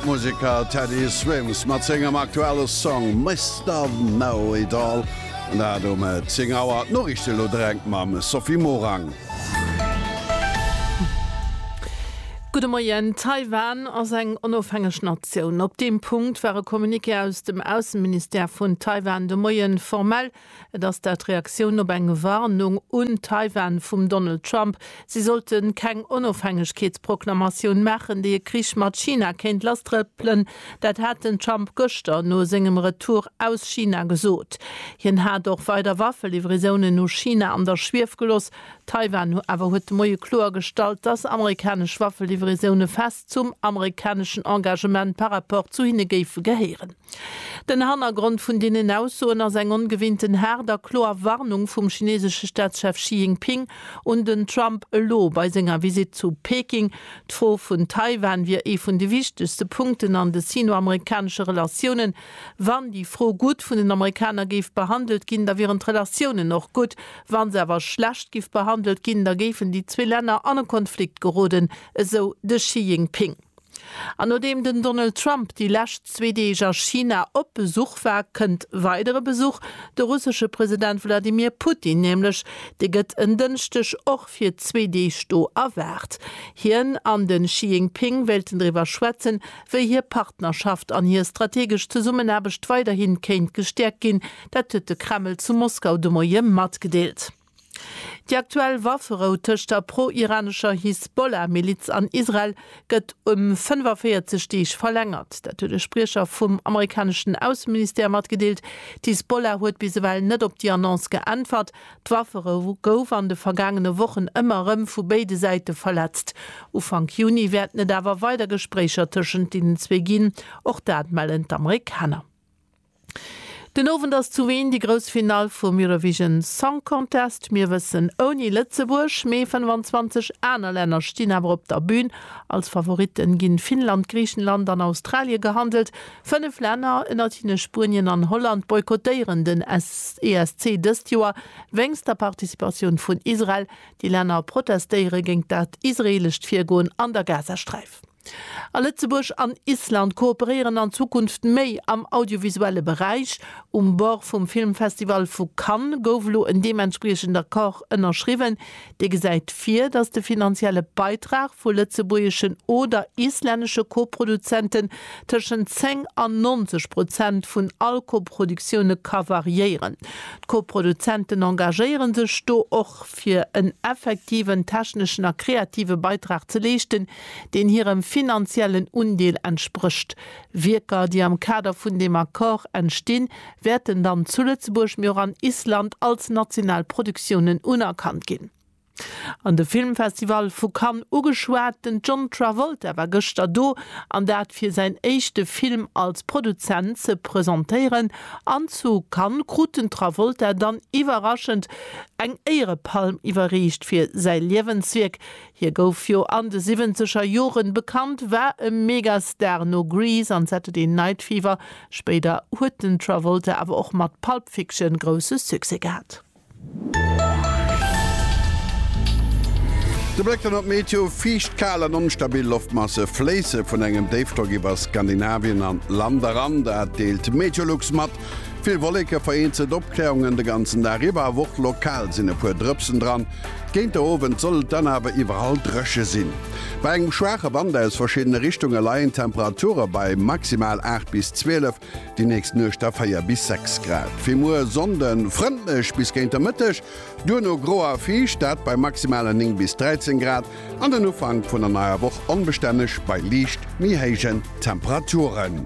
D'Museker Teddy Swims mat sengem aktuelle Song Mister Know It All, an dat um 10 Auer. D'Noriichte elo direkt mam Sophie Morang. Gudde Moien. Taiwan ass eng onofhängeg Natioun. Op deem Punkt war e Communiqué aus dem Ausseministère vun Taiwan de Moie formell Et ass dat Reaktioun op eng Warnung un Taiwan vum Donald Trump, si sollte keng Onofhängegkeetsproklamatioun maachen, déi e Krich mat China kéint lasstrëppelen. Dat hat den Trump gëschter no sengem Retour aus China gesot. Hien hat och weider Waffelivraisonen no China an der Schwief geloss. Taiwan hu awer huet de Moie kloergestallt, dass amerikanesch Waffelivraisoune fest zum amerikaneschen Engagement par rapport zu hinne géife gehéieren. Den Hannergrond vun deenen Aussoen ass eng ongewinnten haart a kloer Warnung vum chinesesche Staatschef Xi Jinping un den Trump elo bei senger Visitt zu Peking. D'Fro vun Taiwan wier ee vun de wichtegste Punkten an de sino-amerikanesche Relatiounen. Wann déi Fro gutt vun den Amerikaner géif behandelt ginn, da wieren d'Relatiounen och gutt. Wa se awer schlecht giff behandelt ginn, da géifen déi zwee Länner an e Konflikt geroden, esou de Xi Jinping. An nodeem den Donald Trump déi lescht zwee Deeg a China op Besuch war, kënnt weider e Besuch. De russesche President Wladimir Putin nämlech, dee gëtt en Dënschdeg och fir zwee Deeg do erwaart. Hien an de Xi Jingping wéilten driwwer schwätzen, wéi hir Partnerschaft an hir strategesch Zesummenaarbecht weiderhi kéint gestäerkt ginn. Dat huet de Kreml zu Moskau de Moie matgedeelt. Déi aktuell Wafferou tëscht der pro-iranescher Hisbollah-Miliz an Israel gëtt ëm 45 Deeg verlängert. Dat huet e Spriecher vum amerikaneschen Ausseministère matgedeelt. D'Hisbollah huet bis ewell net op déi Annonce geäntwert. D'Wafferou gouf an de vergaangene Wochen ëmmer erëm vu béide Säite verletzt. Ufank Juni wäerten et awer weider Gespréicher tëschent deenen zwee ginn, och dat mellen d'Amerikaner. Den Owend ass zu Wien déi grouss Finall vum Eurovision Song Contest. Mir wëssen, ouni Lëtzebuerg, mee 25 aner Länner stinn awer op der Bün. Als Favoritten ginn Finnland, Griichenland an Australien gehandelt. Fënnef Länner, ënnert hinne Spuenien an Holland, boykottéieren den ESC dëst Joer wéinst der Participatioun vun Israel. Déi Länner protestéiere géint dat israeelescht Virgoen an der Gazasträif. A Lëtzebuerg an Island kooperéieren an Zukunft méi am audiovisuelle Beräich. Um Bord vum Filmfestival vu Cannes gouf elo en deementspriechend Accord ënnerschriwwen, dee gesäit vir, datt de finanzielle Beitrag vu lëtzebuergeschen oder islännesche Koproduzenten tëschent 10 an 90 Prozent vun all Koproduktioune ka variéieren. D'Koproduzenten engagéiere sech do och fir en effektiven techneschen a kreative Beitrag ze leeschten, deen hirem finanziellen Undeel entsprécht. Wierker, déi am Kader vun deem Accord entstinn, wäerten dann zu Lëtzebuerg, mee och an Island als national Produktiounen unerkannt ginn. An de Filmfestival vu Cannes ugeschwat, den John Travolta war gëschter do, an dat fir säin éischte Film als Produzent ze presentéieren. An zu Cannes krut den Travolta dann iwwerraschend eng Éierepalm iwwerreecht fir säi Liewenswierk Hie gouf jo an de siwwenzeger Joren bekannt, war e Megastar no Grease an Saturday Night Fever. Spéider huet den Travolta awer och mat Pulp Fiction grousse Succès gehat. De Bléck dann op d'Meteo, Fiicht, kal an onstabil Loftmasse fléisse vun engem Déifdrock iwwer Skandinavien an d'Land eran, dat deelt Meteolux mat. Vill Wolleke, vereenzelt Opkläerungen de ganzen Dag iwwer a och lokal sinn e puer Drëpsen dran. Géint de Owend soll et dann awer iwwerall dréche sinn. Bei engem schwaache Wand aus verschiddene Richtunge leien d'Temperature bei maximal 8 bis 12, déi nächst Nuecht da 4 bis 6 Grad. Fir muer Sonnde frëndlech bis géint de Mëtteg, duerno gro a fiicht, dat bei maximale 9 bis 13 Grad. An den Ufank vun der neier Woch onbestänneg bei liicht méi héijen Temperaturen.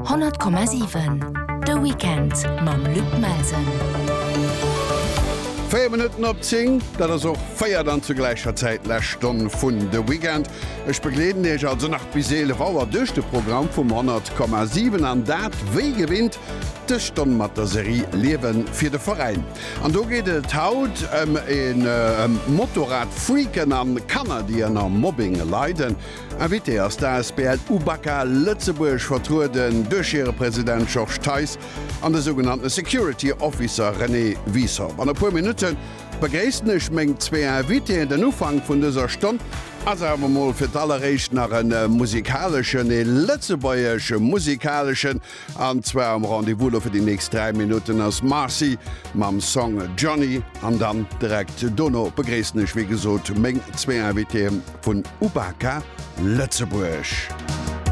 100,7 De Weekend mam Luc Melsen. Véier Minutten op 10, dat ass och véier dann zur gläicher Zäit lescht Stonn vun De Weekend. Ech begleeden Iech also nach bis 11 Auer duerch de Programm vum 100,7 an dat wéi gewinnt dës Stonn mat der Serie Liewen fir de Veräin. An do geet et haut ëm een ëm Motorrad-Freaken an Kanner déi ënner Mobbing leiden. Invité ass d'ASBL UBAKA Lëtzebuerg, vertrueden duerch hire President Georges Theis an de sougenannten Security Officer René Wiessow. An e puer Minutten begréissen ech meng zwee Invitéen. Den Ufank vun dëser Stonn ass awer mol fir d'alleréischt nach e musikaleschen, e lëtzebuergeschen musikaleschen. An zwar am Rendez-vous lo fir déi nächst 3 Minutten ass Marcy mam Song Johnny an dann direkt dono begréissen ech wéi gesot meng zwee Invitéë vun Ubaka Lëtzebuerg.